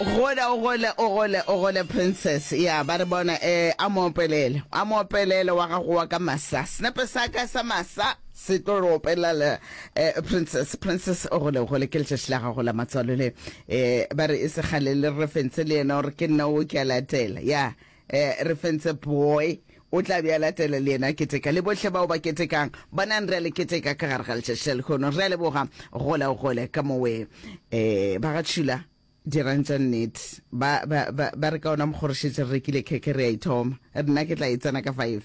gola o gole o gole o gole princess ya ba re bona eh a mo opelele a mo opelele wa gago wa ka masa senepe sa ka sa masa se tlo re opelela le eh, princess princess o gole o gole ke letšatši la gago la matswalo le eh ba re e segale le re fentse le yena gore ke nna o ke a latela ya Eh, re fentse boy o tla be a latela le yena keteka le bohle bao ba ketekang bonang re a le keteka ka gare ga letšatši le kgono re a leboga gole o gole ka mowe um eh, ba ga tšhula dirang tša nnete ba, ba, ba, ba re ka ona mokgorošetše re rekile kheke re a ithoma nna ke tla e tsena ka five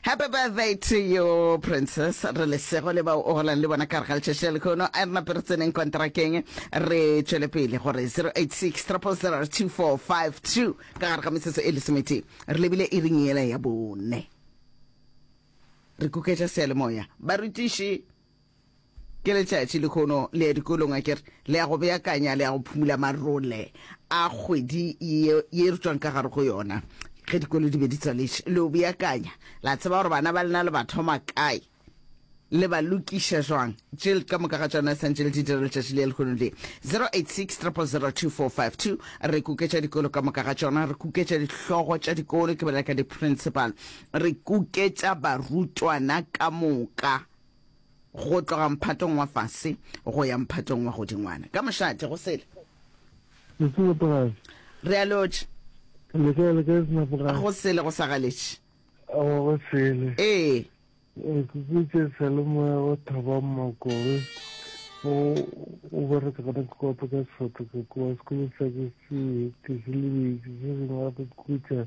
Happy birthday to you, Princess. Re lesego le bao o golang le bona ka re ga letšatši la lekhono. A re nape re tseneng kontrakeng re tšwele pele gore 086 000 2452 ka gare ga metsotso e lesometee re lebile e ring ela ya bone re kuketša seyalemoya barutiši Ke letšatši lekhono le ya dikolong akere, le ya go beakanya, le ya go phumula marole a kgwedi ye, ye re tšwang ka gare go yona. Ge dikolo di be di tswaletše, le o beakanya, la tseba gore bana ba lena le ba thoma kae, le ba lokiša jwang. Tše ka moka ga tšona sa ntše le di dira letšatši le ya lekhono le. 0863002452, re kuketša dikolo ka moka ga tšona, re kuketša dihlogo tša dikolo, ke bolela ka di-principal, re kuketša barutwana ka moka. go tloga mphatong wa fase go ya mphatong wa godingwana ka mošate go sele re a lotše go sele go sa galetše go sele ee kukutše salemoya go thaba mmakobe o bereka gona ke kopa ka sefato ka kowa sekolo sa ke se ke se lebedi se sengwe gape kukutša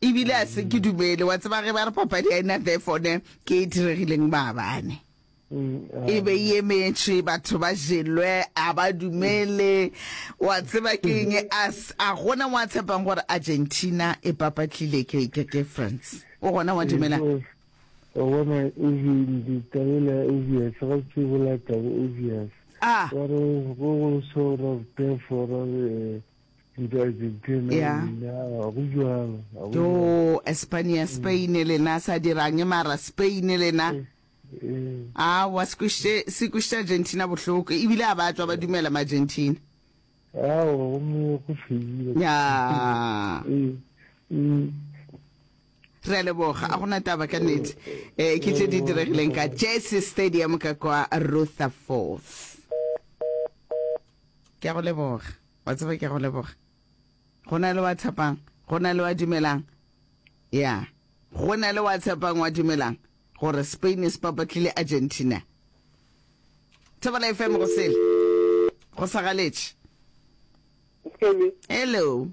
E bile a se ke dumele, wa tseba ge ba re papadi ya ena there fone ke e diregileng maabane. E be e emetše batho ba jelwe, a ba dumele, wa tseba ke eng, a s- a gona wa tshepang gore Argentina e papatlile ke, ke, ke France. O gona wa dumela? Wa bona easy ditabela obvious ga se bola taba obvious Ah. wa re go go so ra therefore ra re eh, ya yo espania spain lena sa dirang mara spain lena a wa se kwišitše argentina bohloko ebile a ba tswa ba dumela maargentina ya re a leboga a gona taba ka nete um ke tše di diregileng ka jesse stadium ka kwa rutherforth ke a go leboga Wa tseba ke a go leboga. Go na le wa tshepang, go na le wa dumelang. Ya, go na le wa tshepang, wa dumelang gore Spain e se papatlile Argentina. Thobela FM go sele. Go sa galetše. Skelly. Hello.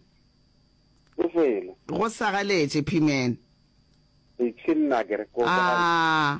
Go sele. Go sa galetše, P-man. Itšhinna ke re ko. Ah.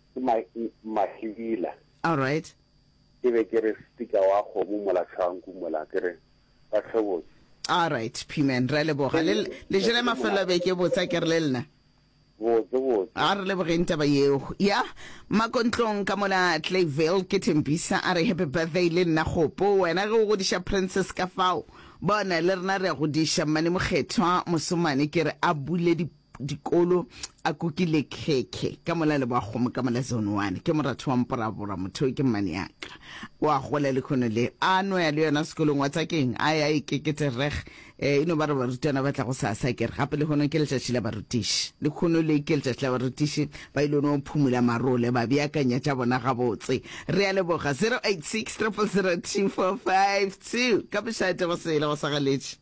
Ke ma, Mahibila. All right. Ke be ke re sticker wa kgomo mola tlhanku mola ke re ba tlhobotse. All right P-man, re a leboga. Le, le jele mafelo a beke botse a ke re le lena. Botse botse. A re lebogeng taba yeo. Ya, Makontlong ka mola Clayville ke Thembisa a re happy birthday le nna Kgopo. Wena ge o godiša Princess ka fao, bona le rena re a godiša Mmane Mokgethwa, Mosomane ke re a bule di, dikolo a kukile khekhe ka mola le boakgomo ka mola zone one ke moratho wa mporabora motho ke mmane yaka o a gola le khono le a no ya le yona sekolong wa tsakeng a ya ikeketse reg eh ino ba re barutwana ba tla go sa sa kere gape le khono ke letšatši la barutiši le khono le ke letšatši la barutiši ba ile no phumula marole ba beakanya tša bona gabotse re a leboga 0863002452 ka bošate go sele go sa galetše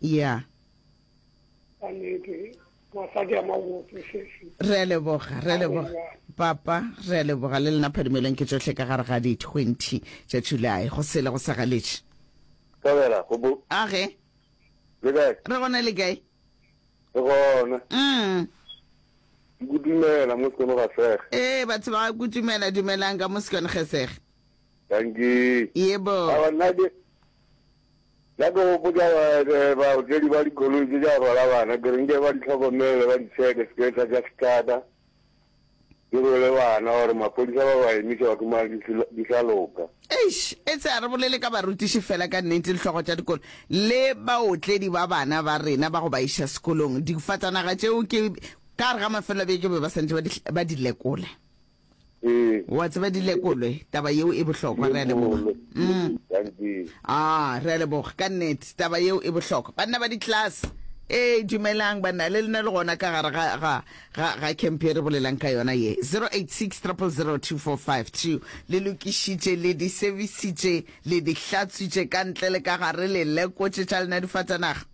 ya re a leboga re a leboga papa re a leboga le lena phadimelong ke tsotlhe ka gare ga di-twenty tša july go sele go sa galetše Tabela, go bo, age le kae? re gona le kae Ke gona. mm. Ke go dumela mo sekono ga sege. ee batho ba ga kutumela dumelang ka mosekone gesege Dankie. yebo Awa nna ke Ka ke gopotša baotledi ba dikoloi tše tša rwala bana, ke re nke ba di hlokomele, ba di tšheke sepetla tša setlata, ke rwele bana gore maphodisa ba ba emiša ba khumane di sa loka. Eish, etse a re bolele ka barutiši fela ka nnete dihlogo tša dikolo le baotledi ba bana ba rena ba go ba iša sekolong. Difatanaga tšeo ke ka re ga mafelobeke be ba santše ba di lekola. Ee. Wa tseba di lekolwe, taba yeo e bohlokwa, re a leboga. Lekolwe. Mm. Thank you. Ah, re a leboga ka nnete, taba yeo e bohlokwa. Banna ba di-class, ee dumelang banna, le lena le gona ka gare ga ga ga ga camp e re bolelang ka yona ye. 086 000 2452 le lokišitše, le di servicitše, le di hlatswitše ka ntle le ka gare, le lekotše tša lena difatanaga.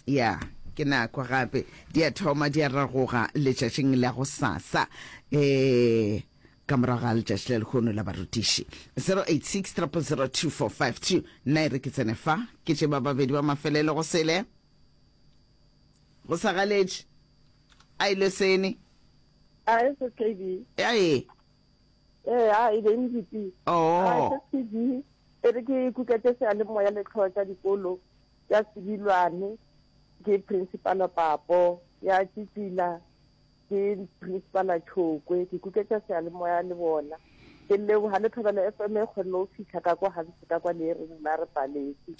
ya ke nako gape di a thoma di a ragoga letšatšing la go sasa um ka morago ga letšatši le lekgono la barutiši 0860002452 nna e re ke tsene fa ke tše ba babedi ba mafelelo go sele go sa galetše a ile sene a e se kb ya e ee a e be mdp oo e re ke ikuketse sealemoya le tlhoa tsa dikolo ya Sebilwane, ke Principala Papo, ya Tšitsila ke Principala Tšhokwe. Ke kuketša sealemoya le bona. ke leboga le thobela f m e kgonne go fitlha ka kwa gantsi ka kwa le e reng la re paletse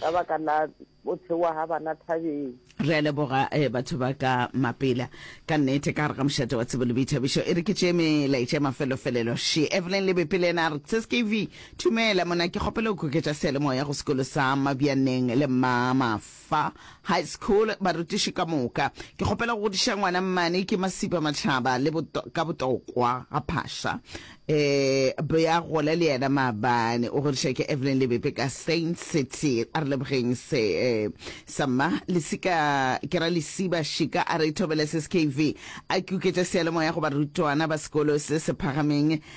ka baka la bothewa ga bana thabeng re a leboga eh, batho ba ka mapela ka nnete ka gare ga mošate wa tsebo le boithabišo e re ke tšee melaetša e mafelofelelo she evelyn lebepele ena a re tseskv Dumela, monna. Ke kgopela go kgoketša seyalemoya go sekolo sa Mabjaneng le Mmamafa High School, barutiši ka moka. Ke kgopela go godiša ngwana mmane, ke Masipa Matlaba, le boto, ka botokwa ga Phasha. E, bea gole le yena maabane. O godiša ke Evelyn Lebepe ka Saint City. A re lebogeng se, e, sa mma. Lesika, ke ra Lesiba Shika, a re thobele SKV. A kgoketša seyalemoya go barutwana ba sekolo se se phagameng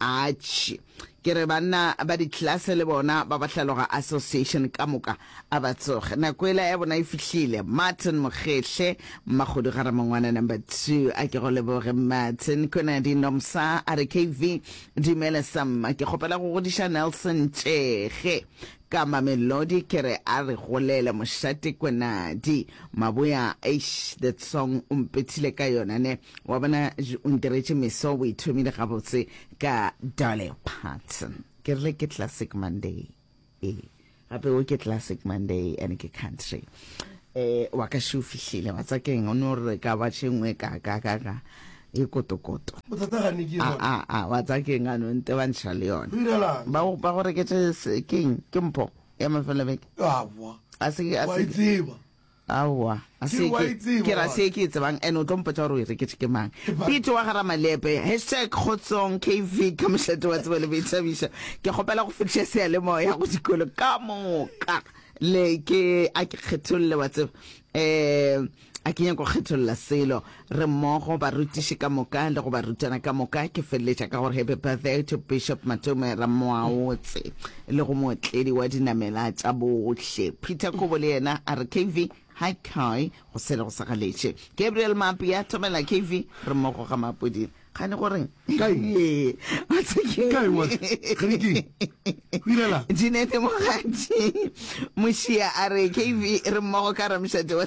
Atšhe. Ke re banna ba diklase le bona ba bahlaloga association ka moka. A ba tsoge. Nako ela ya bona e fihlile. Martin Mokgehle, Mmakgodu ga Ramongwana number two. A ke go leboge Martin. Konadi Nomsa a re KV, dumela Samma. Ke kgopela go godiša Nelson Tšege ka Mamelodi. Ke re a re golele mošate Konadi. Maboya, eish that song o mpethile ka yona ne. Wa bona, o ntiretše meso, o e thomile gabotse ka Dolly Parton. Ke rile ke Classic Monday. Ee, gape o ke Classic Monday and ke country. Eh, wa ka še o fihlile, wa tsa keng, o no re ka ba tšengwe ka ka ka ka e kotokoto. Bothata ga ne ke A, a, a, wa tsa keng, ano nte ba ntšha le yona. Go direla'ng? Ba go- ba go reketše se- keng, ke mpho ya mafelobeke. Aowa, A se- a wa se- e tseba. Aowa, a se ke, ke ra se ke e tsebang, and o tlo mpotsa gore o e reketše ke mang. Pete wa Garamalepe, hashtag Kgotsong KV ka mošate wa tsebo le boithabišo. Ke kgopela go fetiša seyalemoya go dikolo ka moka, le ke a ke kgetholle wa tseba, um a ke nyake go kgetholla selo. Re mmogo, barutiši ka moka le go barutwana ka moka. Ke feleletša ka gore Happy Birthday to Bishop Matome Ramoaotse le go mootledi wa dinamela tša bohle Peter Kobo le yena a re KV hi Kai go sele go sa galetše. Gabriel Mapi ya thomela KV re mmogo ga Mapodi kgane gore Jeanette Mogatši Mošia a re KV re mmogo ka Ramšate wa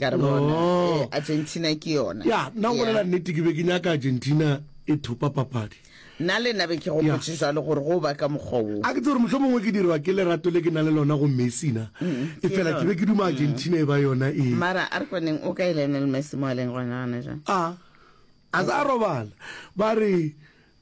ka re bona No. eh, argentina ke yona ya nna go Yeah. bolela nnete ke be ke nyaka argentina e thopa papadi nna le nna be ke Yeah. gopotse jalo gore go ba ka mokgwa wo a ke tse gore motlho mongwe ke dirwa ke lerato le ke na le lona go messina e fela ke be ke duma argentina e ba yona e Mm-hmm. mara a re koneng o ka e lionel messi mo a leng gona gona jang a a sa robala ba re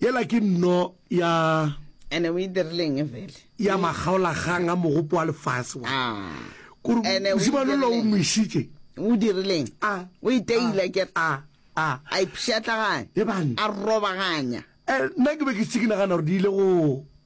Yela ke nno ya. Ene o e dirileng vele? Ya makgaolakgang a mogopo wa lefase wa. Ah. Kore Ene o e mosimane lo o dirileng? moisitše. O dirileng? A. O e teile ke re. A. A. A ipshatlaganya. Ebang. A robaganya. Eh, nna ke be ke se ke nagana gore di ile go.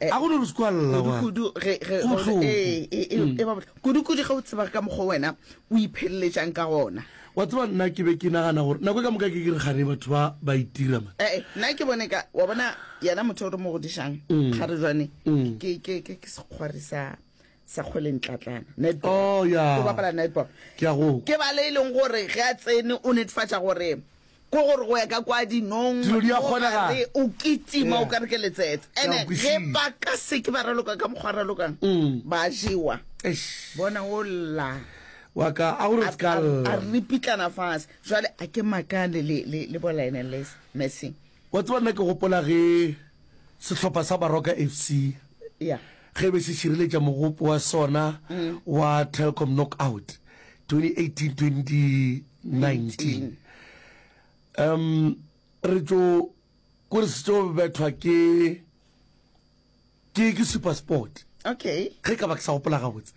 Eh, a go no squal la wa kudu ge ge Go go- hloko. eh, eh, eh, Mm. eh, ba botla- kudu kudu ge o tseba ka mokgwa wena o ipheleletsang ka gona wa tseba nna ke be ke nagana gore nako e ka moka ke ke re gane batho ba ba itira man ee nna ke bone ka wa bona yena motho o re mo godišang Mm. kgare jwane Mm. ke ke- ke- ke sekgwari sa Sekgweleng Tlatlana netball Oh, yeah. go bapala netball Ke a go- ke ba le e leng gore ge a tsene o netefatša gore ko gore go ya ka kwa dinong Dilo di a mo kgonagala. gare, o kitima Yeah. o ka re ke letsetse Ke a ene go ge kwešile. ba ka seke ba raloka ka mokgwa ba ralokang Mm. ba jewa Eish, bona o lla wa ka a gore a- se ka a- a lla. ripitlana fase jwale a ke makane le- le le bo lionel Les- messing wa tseba nna ke gopola ge sehlopha sa baroka f c ya ge e be se šireletša mogopo wa sona wa Telkom Knockout 2018-2019. Um, re tšo kore se tšo bethwa ke ke ke Supersport Okay. ge ka ba ke sa gopola gabotse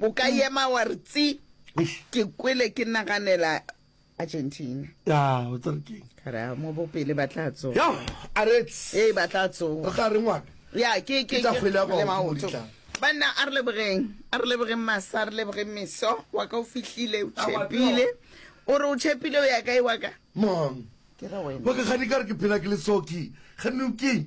O ka ema wa re tsi. Ke kwele ke naganela Argentina. Ya, o tsa re keng? Ka re a mo bopele ba tla tsoga. Ya, a re tsi. Ee, ba tla tsoga. O tla re ngwana? Ya, ke ke ke kgwele go maoto. Banna a re lebogeng, a re lebogeng masa, a re lebogeng meso. Wa ka o fihlile, o tšhepile. O re o tšhepile o ya kae wa ka? Mang? Ke re wena. Wa ka gane ka re ke phela ke le soki. Gane o keng?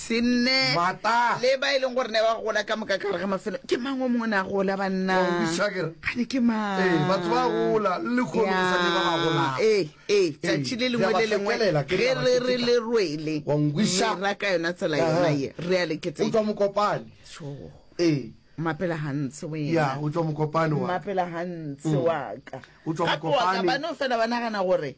Se nne le ba e leng gore ne ba gola ka moka kare ga mafelo ke mang o mongwe ne a gola banna gane ke mangbatho ba gola ee ee tsatši le lengwe le lengwe ge re re le rwele ra ka yona tsela yona ye re a leketse utlwa mokopane ee mapela gantse wena utlwa mokopane wa mapela gantse wa ka gape wa ka bano fela ba nagana gore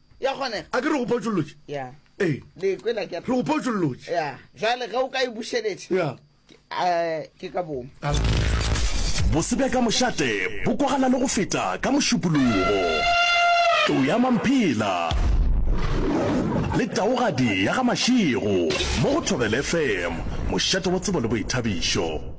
ya kgonega a ke re go potšolotše ya ee le kwela ke re go potšolotše ya jwale ge o ka e bušeletša ya eh, ke ka bomo Bose bja ka mošate bo kwagala le go feta ka mošupologo. Tlou ya Mamphela le taogadi ya ga Mašego mo go Thobela FM, mošate wa tsebo le boithabišo.